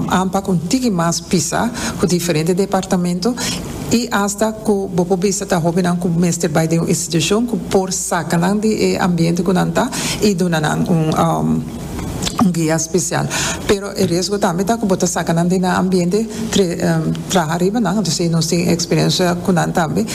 Ampa cu un tiki mas pisa cu diferente departamento y hasta cu bo por bisa ta hobennan cu mester bay den un institucion cu por saca nan di e ambiente cu nan ta y duna nan un guia special. Pero e riesgo tambe ta cu bo ta saca nan di nan ambiente tre traha riba nan. Entonces y nos tin experiencia cu nan tambe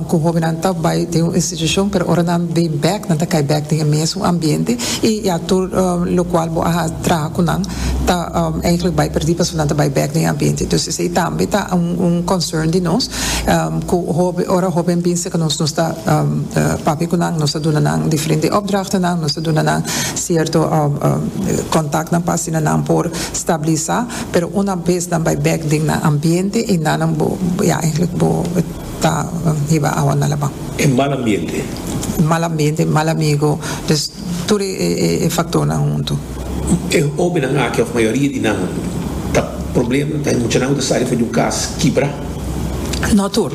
cu hobennan ta bay den un institucion pero ora nan bay back nan ta cay back den e mesun ambiente y ya tur locual bo a traha cu nan ta eigenlijk bai perdí pasobra nan ta bai bek den e ambiente. Dus esei tambe ta un concern di nos cu hopi ora hopi a binse cu nos ta papia cu nan, nos ta duna nan diferente opdrachtenan, nos ta duna nan cierto contactnan pa asina nan por stabilisa pero una bes nan bai bek den nan ambiente y nan ya eigenlijk bo ta hiba awa na laban. E mal ambiente. Mal ambiente, mal amigo, dus tur e factornan huntu. E hobennan aki, òf mayoria di nan, ta problema, ta e muchanan ku ta sali for di un kas kibra? No tur.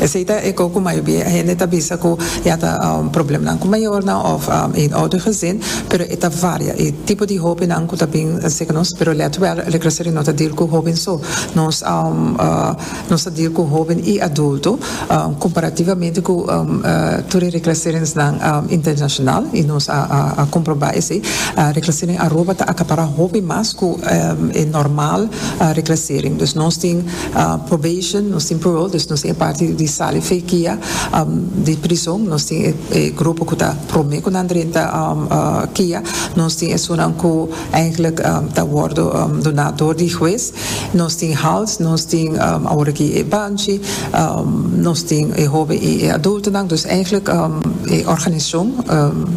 Esei ta e ku mayoria hende ta bisa ku ya ta problemnan ku mayornan òf eenoudigezind, pero e ta varia. E tipo di hobennan ku ta bin serka nos, pero let wèl, Rekresering no ta dil ku hoben so. Nos Nos ta dia cu hoben y adulto comparativamente cu tur e reclaseringnan internacional y nos a comproba esey. Reclasering Aruba ta acapara hopi mas cu e normal reclasering. Dus nos tin probation, nos tin parole, dus nos tin e parti di sali fekia di prison, nos tin e grupo cu ta prome cu nan drenta kia, nos tin esunnan cu. Eigenlijk ta wordo duna door di huez. Nos tin hals, nos tin awor aki e banchi, nos tin e hoben y e adultonan. Dus eigenlijk e organisacion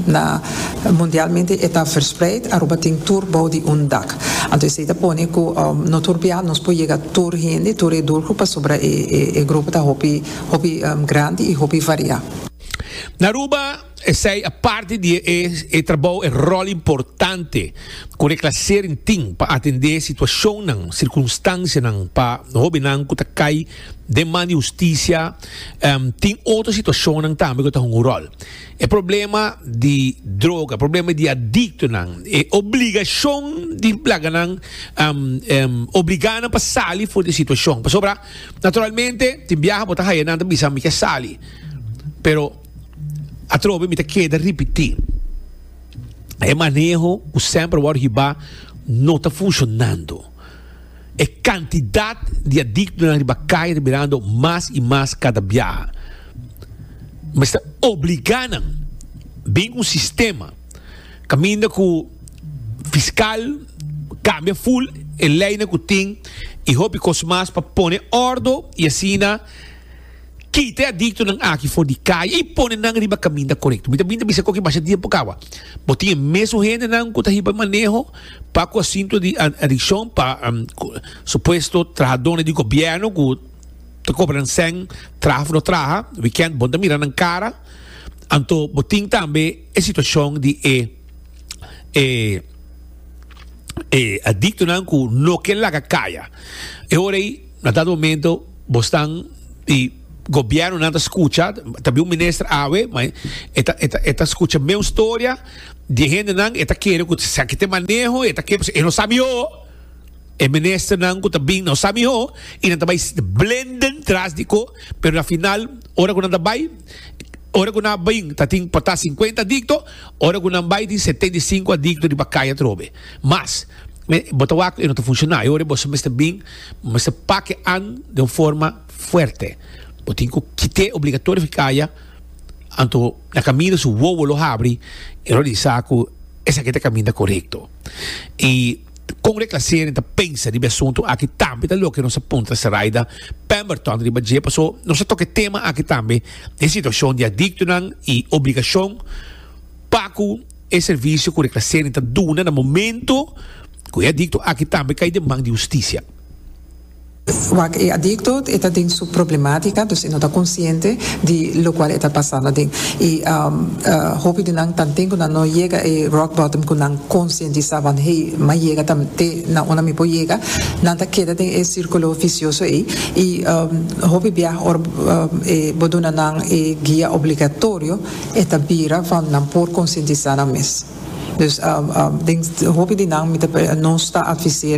na mundialmente e ta verspreid. Aruba tin tur bou di un dak. Anto esey ta pone cu no tur bia nos por yega tur hende, tur e doelgroep pasobra e grupo ta hopi grandi y hopi varia. Na Aruba. Esei a parti di e trabou, e ròl importante ku reklasering tin pa atendé situashonnan, sirkunstansianan pa hóbennan ku ta kai den man di hustisia. Tin otro situashonnan tambe ku ta hunga un ròl. E problema di droga, e problema di adiktonan, e obligashon di blaganan obligá nan pa sali for di e situashon. Pasobra naturalmente tin biaha bo ta haya nan ta bisa mi ke sali pero. Atrobe mi ta keda ripití, e maneho ku semper wòrdu hibá no ta funshonando. E kantidat di adiktonan riba kai ta birando mas i mas kada biaha. Mester obligá nan bin un sistema kaminda ku fiskal kambia ful e leinan ku tin i hopi kos mas pa pone òrdu i asina Kita e adiktonan aki for di kaya i pone nan riba kaminda korekto. Mi ta bin ta bisa ku aki masha tiempu kaba. Bo tin e mesun hendenan ku ta hiba maneho pa ku asuntu di adikshon pa supuesto trahadónan di gobièrnu ku ta kobra nan sèn traha of no traha wikènt. Bon ta mira nan kara. Anto bo tin tambe e situashon di e e e adiktonan ku no ke laga kaya. E hora ei. Na dat momento bosnan di gobiernonan ta scucha, ta bin un minister awe, ma e ta e ta scucha meun storia di e hendenan, e ta kere cu sa ki ta e maneho, e ta kere pasobra e no sa miho, e ministernan cu ta bin no sa miho y nan ta bay blenden tras di cu, pero na final ora cu nan ta bay, ora cu nan a bin ta tin por ta cincuenta adicto, ora cu nan bay tin setenta y cinco adicto riba cay atrobe, mas bo ta wak cu e no ta funciona y ora esbo mester bin. Mester pake an den un forma fuerte. Bo tin cu kite obligatorio fi caya, anto na caminda su wowo lo habri, e lo disa cu esaki ta caminda corecto. Y con reclasering ta pensa riba e asunto aki tambe ta loke nos a puntra Seraida Pemberton riba dje. Paso, nos a toca e tema aki tambe, den situacion di adictonan y obligacion pa cu. E servisio ku Reclassering ta duna na momento ku e adikto aki tambe kai den man di hustisia. Wak e adikto e ta den su problematika, dus e no ta konsiente di lokual e ta pasa naden. I hopi di nan tanten ku nan no yega e rock bottom ku nan konsientisá wan hey m'a yega ta te na unda mi por yega, nan ta keda den e sirkulo visioso ei. I hopi biaha ora bo duna nan e guia obligatorio, e ta bira pa nan por konsientisá nan mes. Dus den hopi di nan mi ta nos ta avis'é